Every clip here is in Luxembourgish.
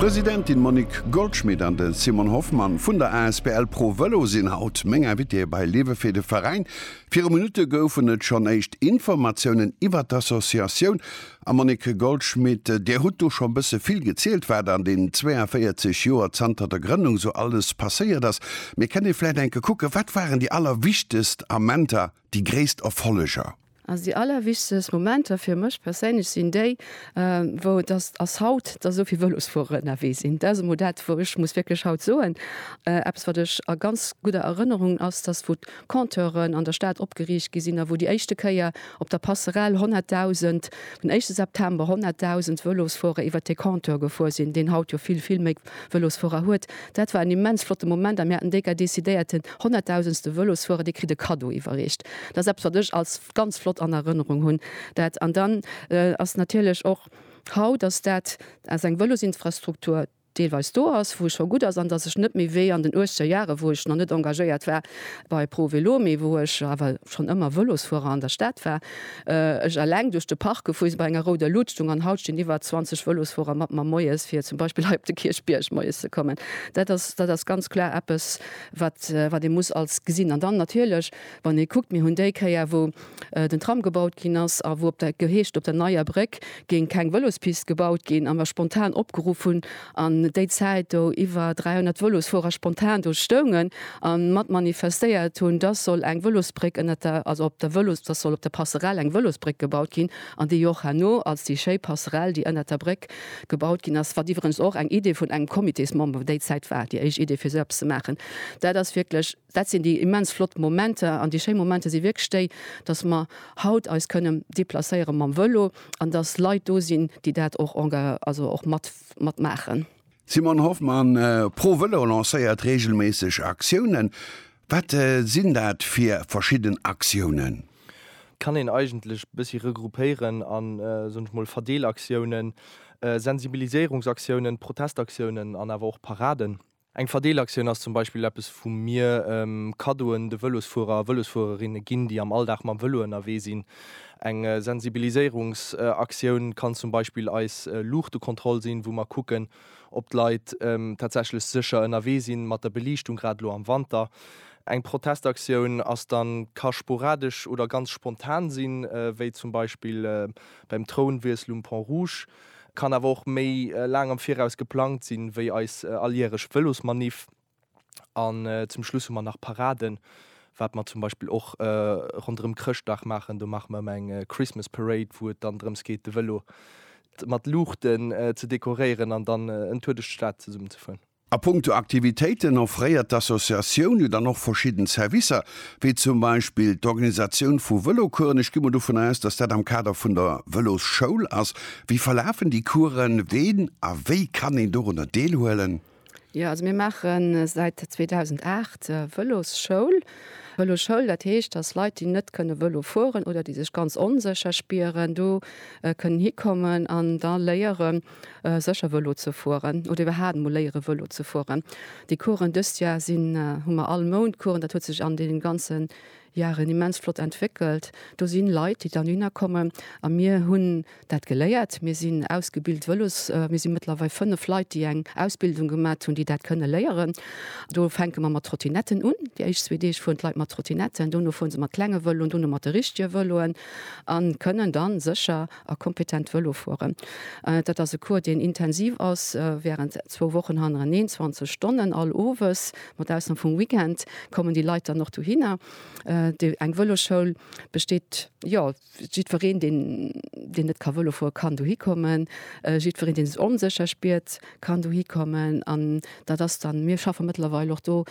D'Presidentin Monique Goldschmit an de Simon Hoffmann vun der asbl Pro Vëlo sinn haut meng Invitéeë bei Liewe fir de Veräin. Viru Minutte goufen et schonn éischt Informatiounen iwwer d'Associatioun. A Monique Goldschmit, Dir hutt do scho bësse vill gezielt, wat an deenen 42 Joer zanter der Grënnung sou alles passéiert ass. Mee kënnt ee vläicht enke kucken, wat waren déi allerwichtegst Amenter? Déi gréisst Erfolleger? Also déi allerwichtegst Momenter fir mech perséinlech sinn déi, wou et ass, ass haut, datt esou vill Vëlosfuerer ënnerwee sinn. Dat ass emol dat, wou ech muss wierklech haut soen, eppes wat ech a ganz gudder Erënnerung ass, datt wou d'Compteuren an der Stad opgeriicht gi sinn a wou déi éischte Kéier op der Passerelle 100.000, den éischte September 100.000 Vëlosfuerer iwwert dee Compteur gefuer sinn, deen haut jo vill, vill méi Vëlosfuerer huet. Dat war en immens flotte Moment a mir haten déka decidéiert, den honnertdausendste Vëlosfuerer, dee kritt e Kaddo iwwerreecht. Dat ass eppes, wat ech als ganz flott an Erënnerung hunn. Dat an dann ass natierlech och haut, dass dat, dass eng Vëlosinfrastruktur deelweis do ass, wou scho gutt ass an dass ech net méi wéi an den uechzeger Jare, wou ech nach net engagéiert war bei Pro Vélo, mee wou ech awer schonn ëmmer Vëlosfuerer an der Stad war, Ech eleng duerch de Park gefu, si bei enger rouder Luut stung an haut stinn iwwer 20 Vëlosfuerer mat mer moies, fir zum Beispill hei op de Kierchbierg moies ze kommen. Dat ass, dat ass ganz kloer eppes, wat, wat ee muss als gesinn. An dann natierlech, wann ee kuckt, mir hunn déi Kéier, wou den Tram gebaut ginn ass a wou op der, geheescht, op der Neier Bréck géing keng Vëlospist gebaut ginn a mer spontan opgeruff hunn, an déi Zäit do iwwer 300 Vëlosfuerer spontan do stoungen a mat manifestéiert hunn, dass soll eng Vëlosbréck ënnert der, also op der Vëlos, dass soll op der Passerell eng Vëlosbréck gebaut ginn, an déi och herno als déi schéi Passerell, déi ënnert der Bréck gebaut ginn ass, wat iwweregens och eng Idee vun engem Comitésmember déi Zäit war, déi éischt Idee fir sou eppes ze maachen, dat ass wierklech. Dat sinn déi immens flott Momenter. An déi schéi Momenter si wierklech déi, dass mer haut eis kënnen deplacéiere mam Vëlo an dass Leit do sinn, déi dat och enga-, also och mat, mat maachen. Simone Hoffmann, Pro Vëlo lancéiert reegelméisseg Aktiounen. Wat sinn dat fir verschidden Aktiounen? Kann een eigentlech e bëssi regroupéieren a soen ech mol Verdeelaktiounen, Sensibiliséierungsaktiounen, Protestaktiounen an awer och Paraden. Eng Verdeelaktioun ass zum Beispill eppes wou mir Kaddoen de Vëlosfuerer a Vëlosfuererinne ginn, déi am Alldag mam Vëlo ënnerwee sinn. Eng Sensibiliséierungsaktioun kann zum Beispill eis Luuchtekontroll sinn, wou mer kucken, ob d'Leit tatsächlech sécher ënnerwee sinn mat der Beliichtung, grad elo am Wanter. Eng Protestaktioun ass dann, ka sporadesch oder ganz spontan sinn, wéi zum Beispill beim Throunwiessel um Pont Rouge. Kann awer och méi laang am Viraus geplangt sinn, wéi eis alljähreg Vëlosmaniff. An zum Schluss hu mer nach Paraden, wat mer zum Beispill och ronderëm Chrëschtdag maachen. Do maache mer ëmmer eng Christmas Parade, wou et dann drëms geet, de Vëlo mat Luuchten ze dekoréieren an dann en Tour duerch d'Stad zesummen ze fueren. A punkto Aktivitéiten offréiert d'Associatioun jo dann och verschidden Servicer, wéi zum Beispill d'Organisatioun vu Vëlocoursen. Ech gi mol dovun aus, dass dat am Kader vun der Vëlosschoul ass. Wéi verlafen déi Coursen? Ween a wéi kann een dorunner deelhuelen? Jo, also mir maache säit 2008 Vëlosschoul. Vëloschoul, dat heescht, dass Leit, déi net kënne Vëlo fueren oder déi sech ganz onsécher spieren, do kënnen hikommen an da léieren, sécher Vëlo ze fueren oder iwwerhaat emol léiere Vëlo ze fueren. Déi Coursen dëst Jar sinn, hu mer all Mount Coursen, dat huet sech an deenen ganzen Jaren immens flott entwéckelt. Do sinn Leit déi dann dohinner kommen a mir hunn dat geléiert. Mir sinn ausgebilt Vëlos, mir sinn mëttlerweil 5 Leit déi eng Ausbildung gemat hunn déi dat kënne léieren. Do fänke mer mat Trottinetten un, déi éischt zwee Deeg fueren d'Leit mat Trottinetten, dono fueren se mat klenge Vëloen, dono mat de richtege Vëloen an kënnen dann sécher a kompetent Vëlo fueren. Dat ass e Cours, deen intensiv ass, während zwou Wochen hannereneen, 20 Stonnen all Owes, mat Ausnam vum Weekend kommen déi Leit dann och dohinner. Déi eng Vëloschoul besteet, jo, jiddwereen, deen, deen net ka Vëlo fueren, kann dohi kommen. Jiddwereen, dee sech onsécher spiert, kann dohi kommen. An dat ass dann, mir schaffe mëttlerweil och do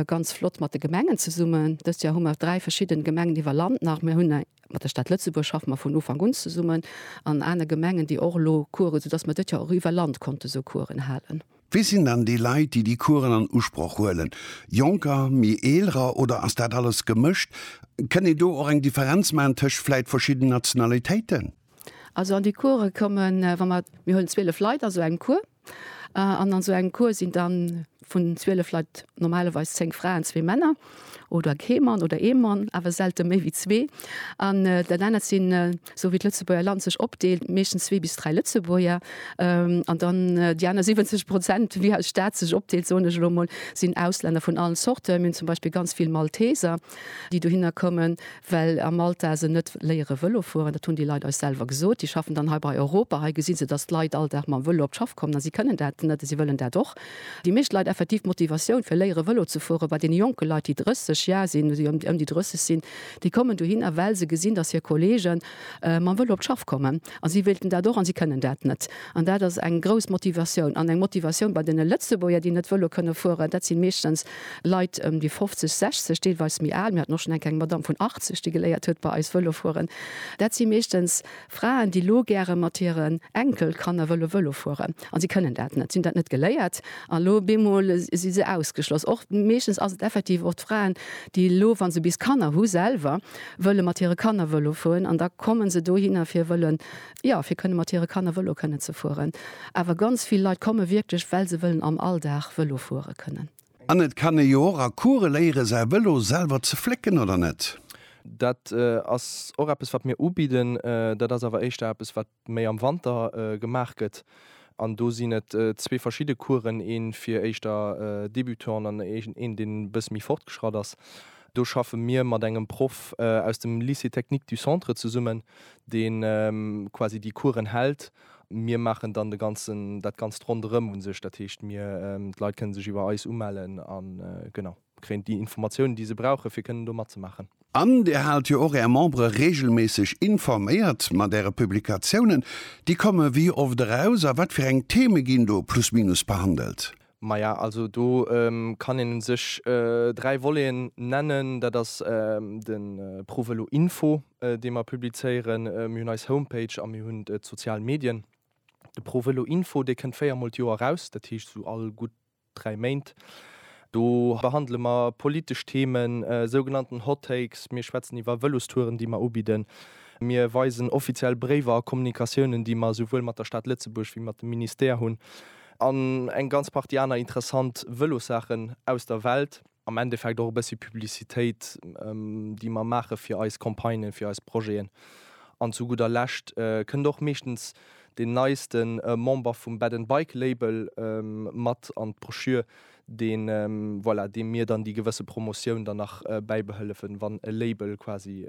ganz flott mat de Gemengen zesummen. Dëst Joer hu mer dräi verschidden Gemengen iwwer Land nach. Mir hunn eng. Mat der Stad Lëtzebuerg schaffe mer vun Ufank un zesummen, an anere Gemengen, déi och elo Coursen, soudass mer dëtt Joer och iwwer Land konnte sou Coursen halen. Wie sinn dann déi Leit, déi déi Coursen an Usproch huelen? Jonker, méi Eelerer oder ass dat alles gemëscht? Kënnt een do och eng Differenz maachen tëscht vläit verschidden Nationalitéiten? Also an déi Coursen kommen, wa mer, mir huelen 12 Leit a sou engem Cours. An an esou engem Cours sinn dann vun 12 Leit normalerweis 10 Fraen, zwee Männer oder kee Mann oder ee Mann, awer selte méi wéi zwee. An dat anert sinn, esou wéi d'Lëtzebuerger Land sech opdeelt, meeschtens zwee bis dräi Lëtzebuerger. An dann déi aner 70 Prozent, wéi eis Stad sech opdeelt, soen ech elo emol, sinn Auslänner vun allen Zorten. Mir hunn zum Beispill ganz vill Malteser. déi dohinner kommen, well a Malta se net léiere Vëlo fueren, dat hunn déi Leit eis selwer gesot. Déi schaffen dann hei bei Europa, hei gesi se, datt d'Leit all Dag mam Vëlo op d'Schaff kommen a si kënnen dat net a si wëllen dat och. Déi meescht Leit, effektiv d'Motivatioun fir léiere Vëlo ze fueren bei deene jonke Leit, déi 30 Jar sinn, déi ëm déi 30 sinn, déi kommen dohinner, well se gesinn, datt hir Kollege mam Vëlo op d'Schaff kommen a si wéilten dat och a si kënnen dat net. An dat ass eng grouss Motivatioun an eng Motivatioun bei deene Lëtzebuerger, déi net Vëlo kënne fueren, dat si meeschtens Leit ëm déi 50, 60, deelweis méi al, mir haten och schonn eng kleng Madamm vun 80, déi geléiert huet bei eis Vëlo fueren, dat si meeschtens Fraen, déi elo gäre mat hiren Enkelkanner wëlle Vëlo fueren a si kënnen dat net, si hunn dat net geléiert an elo op eemol si se ausgeschloss. Och meeschtens ass et effektiv och d'Fraen, déi elo, wa se bis Kanner hu selwer, wëlle mat hire Kanner Vëlo fueren an da komme se dohinner fir wëllen jo, fir kënne mat hire Kanner Vëlo kënnen ze fueren. Awer ganz vill Leit komme wierklech, well se wëllen am Alldag Vëlo fuere kënnen. An et kann ee jo och a Coure léiere säi Vëlo selwer ze flécken, oder net? Dat ass och eppes, wat mir ubidden. Dat ass awer éischter eppes, wat méi am Wanter gemaach gëtt. An do sinn et zwee verschidde Couren, ee fir éischter Débutants an een, deen e bësse méi fortgeschratt ass. Do schaffe mir mat engem Proff aus dem Lycée Technique du Centre zesummen, dee quasi déi Coursen hält. Mir maachen dann de ganzen, dat Ganzt ronderëm u sech. Dat heescht, mir, d'Leit kënne sech iwwer eis umellen a genau, kréien déi Informatiounen, déi se brauchen, fir kënnen do matzemaachen. An Dir haalt jo och Är Membere reegelméisseg informéiert mat Äre Publikatiounen. Déi komme wéi oft eraus a wat fir eng Theme ginn do plus minus behandelt? Maja, also do kann een un sech dräi Voleten nennen. Dat ass den ProVelo Info dee mer publizéieren. Mir hunn eis Homepage a mir hunn d'sozial Medien. De ProVelo Info, dee kënnt véier mol d'Joer raus, dat heescht esou all gutt dräi Méint. Do behandele mer politesch Themen, sougenannten Hot Takes, mir schwätzen iwwer Vëlostouren déi mer ubidden, mir weisen offiziell Bréiwer a Kommunikatiounen déi mer esouwuel mat der Stad Lëtzebuerg wéi mat de Ministère hunn. An eng ganz Partie aner interessant Vëlossaachen aus der Welt. Am Endeffekt och e bëssi Publicitéit, déi mer maache fir eis Campagnen, fir eis Projeten. An zu gudder Lescht kënnt och meeschtens deen neiste Member vum Bed and Bike Label mat an d'Broschür, deen, voilà, deem mir dann déi gewësse Promotioun dann nach bäibehëllefen, wann e Label quasi,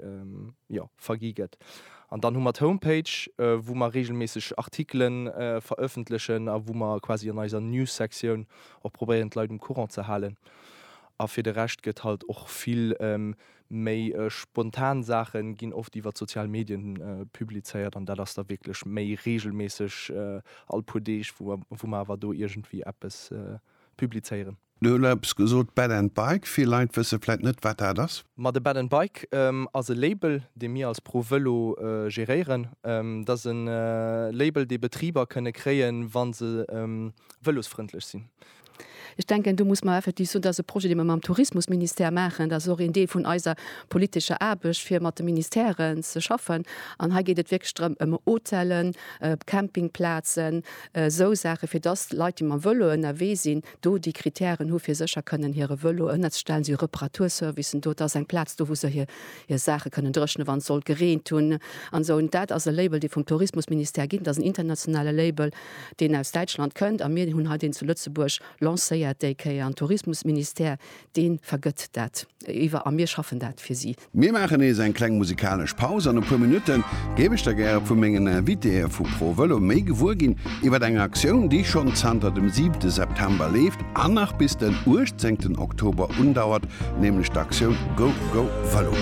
jo, vergi gëtt. An dann hu mer d'Homepage, wou mer reegelméisseg Artikele verëffentlechen a wou mer quasi an eiser News-Sektioun och probéieren, d'Leit um Courant ze halen. A fir de Rescht gëtt halt och vill Méi spontan Saache ginn oft iwwert sozial Medien publizéiert an dat ass da wierklech méi reegelméisseg all puer Deeg wou mer awer do iergendwéi eppes publizéieren. Du hues elo eppes gesot, Bed and Bike, vill Leit wësse vläit net wat dat ass. Ma de Bed and Bike ass e Label dee mir als Pro Vëlo geréieren. Dat ass e Label dee Betriber kënne kréien wa se vëlosfrëndlech sinn. Ech denken, do muss mer effektiv soen, dat ass e Projet, dee mer mam Tourismusministère maachen. Dat ass och een Deel vun eiser politescher Aarbecht, fir mat de Ministèren ze schaffen. An hei geet et wierklech drëm, ëm Hotellen, Campingplazen, esou Saache, fir dass Leit, déi mam Vëlo ënnerwee sinn, do déi Krittären hu fir sécher kënnen hire Vëlo ënnerzestellen. Si hu Reparaturservicen do, et ass eng Plaz do, wou se hir Saache kënnen dréchne wann et sollt gereent hunn an esou. Dat ass e Label, dee vum Tourismusministère ginn, dat ass en internationale Label. deen aus Däitschland kënnt, a mir hunn hei deen zu Lëtzebuerg lancéiert déi Kéier, an Tourismusministère dee vergëtt dat iwwer a mir schaffen dat fir si. Mir maachen nees eng kleng musikalesch Paus. An e puer Minutte géif ech da gäre vu mengen Invitéeë vu ProVëlo méi gewuer ginn iwwer eng Aktioun, déi schonn zanter dem siwte September leeft an nach bis den uechtzéngten Oktober undauert, nämlech d'Aktioun Go Go Vëlo.